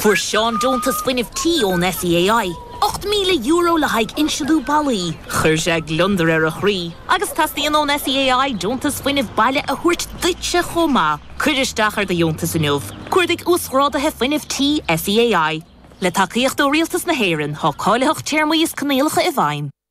Fuair Seán deontas fuinnimh tí ón SEAI, €8,000 le haghaidh insealú ballaí. Chuir sé gliondar ar a chroí agus teastaíonn ón SEAI deontas fuinnimh baile a thabhairt duitse chomh maith. Cuir isteach ar do dheontas inniu. Cuardaigh Uasghráduithe Fuinnimh Tí SEAI. Le tacaíocht ó Rialtas na hÉireann, tá cáilitheacht téarmaí is coinníollacha i bhfeidhm.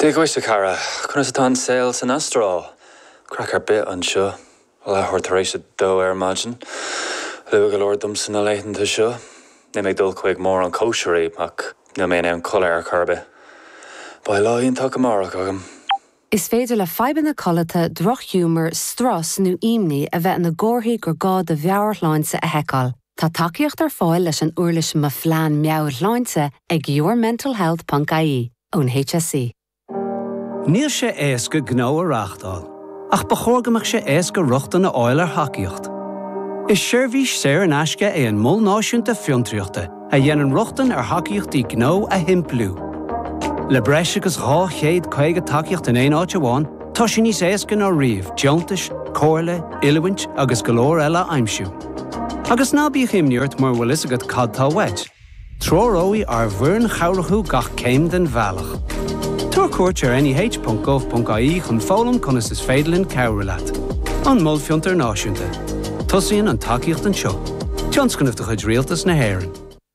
Dia dhuit, a chara. Conas atá an saol san Astráil? Craic ar bith anseo. Leathuair tar éis a dó ar maidin. Luath go leor domsa na laethanta seo. Níl mé ag dul chuig mórán cóisirí, ach níl mé in ann codladh ar chor ar bith. Beidh lá iontach amárach agam. Is féidir le fadhbanna codlata, drochghiúmar, strus nó imní a bheith ina gcomharthaí gur gá do mheabhairshláinte a sheiceáil. Tá tacaíocht ar fáil leis an uirlis Mo Phlean Meabhairshláinte ag yourmentalhealth ponc ie ón HSE. Níl sé éasca gnó a reáchtáil, ach ba chóir go mbeadh sé éasca rochtain a fháil ar thacaíocht. Is seirbhís saor in aisce é an Mol Náisiúnta Fiontraíochta a dhéanann rochtain ar thacaíochtaí gnó a shimpliú. Le breis agus 250 tacaíocht in aon áit amháin, tá sé níos éasca ná riamh deontais, comhairle, oiliúint agus go leor eile a aimsiú. Agus ná bíodh imní ort mura bhfuil fhios agat cad tá uait, treoróidh ár bhfoireann chabhrach thú gach céim den bhealach. Tabhair cuairt ar neh.gov.ie chun foghlaim conas is féidir linn cabhrú leat. An Mol Fiontair Náisiúnta. Tosaíonn an tacaíocht anseo. Tionscnamh de chuid Rialtas na hÉireann.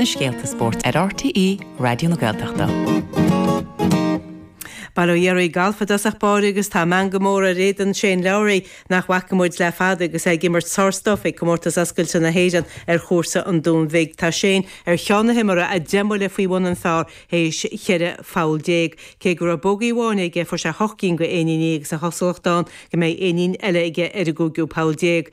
na scéalta spóirt ar RTÉ Raidió na Gaeltachta. Bail ó Dhia oraibh galf i dtosach báire agus tá meangadh mór ar éadan Shane Lowry nach bhfaca muid le fada agus é ag imirt thar cionn ag Comórtas Oscailte na hÉireann ar chúrsa an Dúin Bhig. Tá Shane ar cheann na himeartha deich mbuille faoi bhun an phar théis 14 pholl. Cé go raibh bogaí amháin aige fuair sé hocht gcinn de éiníní agus an chosúlacht ann go mbeidh éinín eile aige ar an gcúigiú poll déag.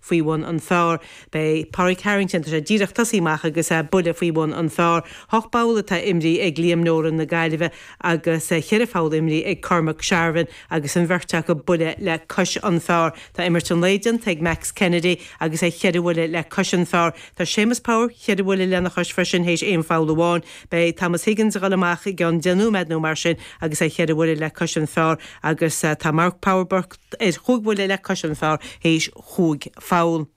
faoi bhun an phar. Maidir le Pádraig Harrington, tá sé díreach tosaigh amach agus é buille faoi bhun an phar. Hocht bpoll atá imrithe ag Liam Nolan na Gaillimhe agus cheithre pholl imrithe ag Cormac Sharvin agus an bheirt acu buille le cois an phar. Tá imirt an lae déanta ag Max Kennedy agus é cheithre bhuille le cois an phar. Tá Séamus Power cheithre bhuille lena chois freisin théis aon pholl amháin. Beidh Thomas Higgins ag dul amach i gceann deich nóiméad nó mar sin agus é cheithre bhuille le cois an phar agus tá Mark Power, Burke, T ar chúig bhuille le cois an phar théis chúig pholl.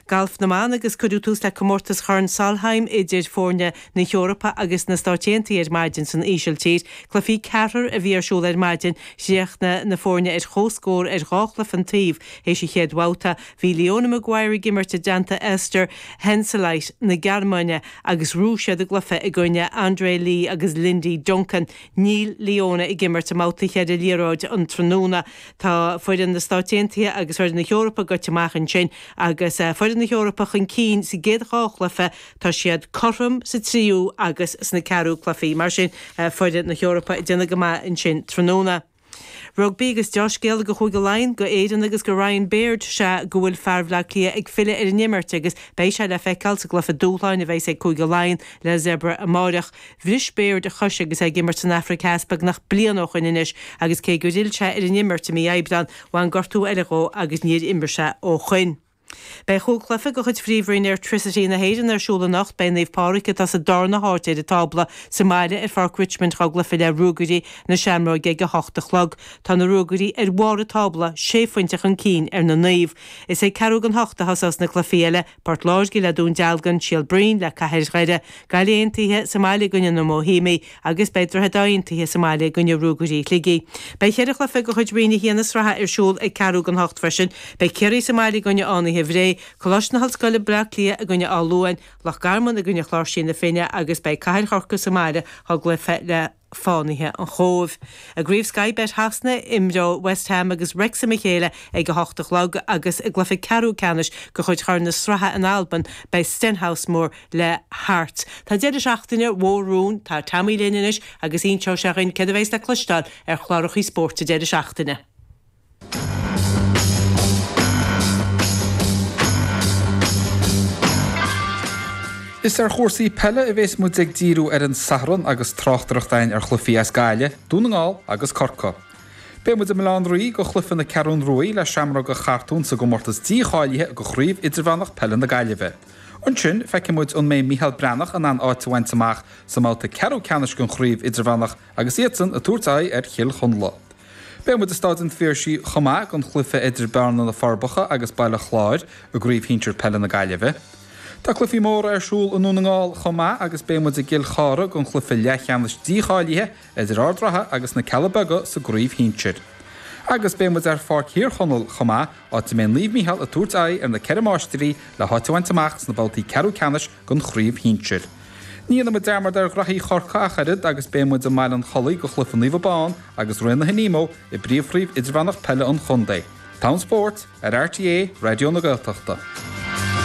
Galf na mban agus cuireadh tús le comórtas Chorn Solheim idir foirne na hEorpa agus na Stáit Aontaithe ar maidin san Ísiltír. Cluichí ceathrair a bhí ar siúl ar maidin. Chríochnaigh na foirne ar chomhscór ar dhá chluiche an taobh théis an chéad bhabhta. Bhí Leona Maguire ag imirt i dteannta Esther Henseleit na Gearmáine agus bhuaigh siad a gcluiche i gcoinne Andrea Lee agus Lindy Duncan. Níl Leona ag imirt i mbabhta cheithre liathróid an tráthnóna. Tá foireann na Stáit Aontaithe agus foireann na hEorpa gaibhte amach ansin agus foireann na hEorpa chun cinn sa gcéad dhá chluife. Tá siad cothrom sa tríú agus sna ceathrú cluichí. Mar sin foireann na hEorpa ag déanamh go maith ansin tráthnóna. Rugbaí agus dea-scéal go Chúige Laighean, go Éirinn agus go Ryan Baird sea go bhfuil fear Bhleá Cliath ag filleadh ar an imirt agus beidh sé le feiceáil sa gcluife dúshláin a bheidh ag Cúige Laighean le Zebre amáireach. Bhris Baird a chois agus é ag imirt san Afraic Theas beagnach bliain ó shoin anois agus cé gur fhill sé ar an imirt i mí Aibreán, bhain gortú eile dhó agus níor imir sé ó shoin. Beidh Chúl Cluife de chuid Phríomhroinn Airtricity na hÉireann ar siúl anocht. Beidh Naomh Pádraig, atá sa darna háit ar an tábla, sa mbaile ar Pháirc Richmond go chluife le Ruagairí na Seamróige ag a hocht a chlog. Tá na Ruagairí ar bharr an tábla, sé phointe chun cinn ar na Naomh. Is ag ceathrú gon hocht a thosós na cluichí eile. Port Láirge le Dún Dealgan, Seal Broin le Cathair Dhoire, Gaillimh Aontaithe sa mbaile i gcoinne na mBóihéimigh agus beidh Droichead Átha Aontaithe sa mbaile i gcoinne Ruagairí Shligigh. Beidh ceithre chluiche de chuid Roinn 1 na sraithe ar siúl ag ceathrú gon hocht freisin. Beidh Ciarraí sa mbaile i gcoinne Fhánaithe Bhré, Coláiste na hOllscoile Bleá Cliath i gcoinne Áth Luain, Loch Garman i gcoinne Chláirsí na Finne agus beidh Cathair Chorcaigh sa mbaile go chluiche le Fánaithe an Chóibh. I gCraobh Sky Bet Shasana, imreoidh West Brom agus Wrexham a chéile ag 8 a chlog agus i gcluiche ceathrú ceannais de chuid Chorn na Sraithe in Albain, beidh Stenhousemuir le Hearts. Tá deireadh seachtaine mhór romhainn, tá Tommy linn anois agus inseoidh sé dhuinn céard a bheas le cloisteáil ar chlárachaí spóirt an deireadh seachtaine. Is ar chúrsaí peile a bheas muid ag díriú ar an Satharn agus tráchtaireacht againn ar chluichí as Gaillimh, Dún na nGall agus Corca. Beidh muid i mBaile an Rí go chluiche na Ceathrún Ruaidhe le Seamróga Chartúin sa gcomórtas dícháilithe go Craobh Idirmheánach Peile na Gaillimhe. Ansin feicfidh muid an mbeidh Micheál Breathnach in ann áit a bhaint amach sa mbabhta ceathrú ceannais den Chraobh Idirmheánach agus iadsan ag tabhairt aghaidh ar Chill Chonla. Beidh muid ag Staid an Phiarsaigh chomh maith don chluiche idir Bearna, Na Forbacha agus Baile Chláir i gCraobh Shinsir Peile na Gaillimhe. Tá cluichí móra ar siúl i nDún na nGall chomh maith agus beidh muid i gCill Chartha don chluiche leathcheannais dícháilithe idir Ard an Rátha agus Na Cealla Beaga sa gCraobh Shinsir. Agus beidh muid ar Pháirc Thír Chonaill chomh maith, áit a mbeidh Naomh Micheál ag tabhairt aghaidh ar Na Ceithre Máistrí le háit a bhaint amach sna babhtaí ceathrú ceannais den chraobh shinsir. Ní dhéanfaidh muid dearmad ar ghnaithí Chorca ach oiread agus beidh muid i mBaile an Chollaigh go chluiche Naomh Abán agus Rinn na hAdhna Móire i bpríomhchraobh idirmheánach peile an chontae. Teann spóirt ar RTÉ Raidió na Gaeltachta.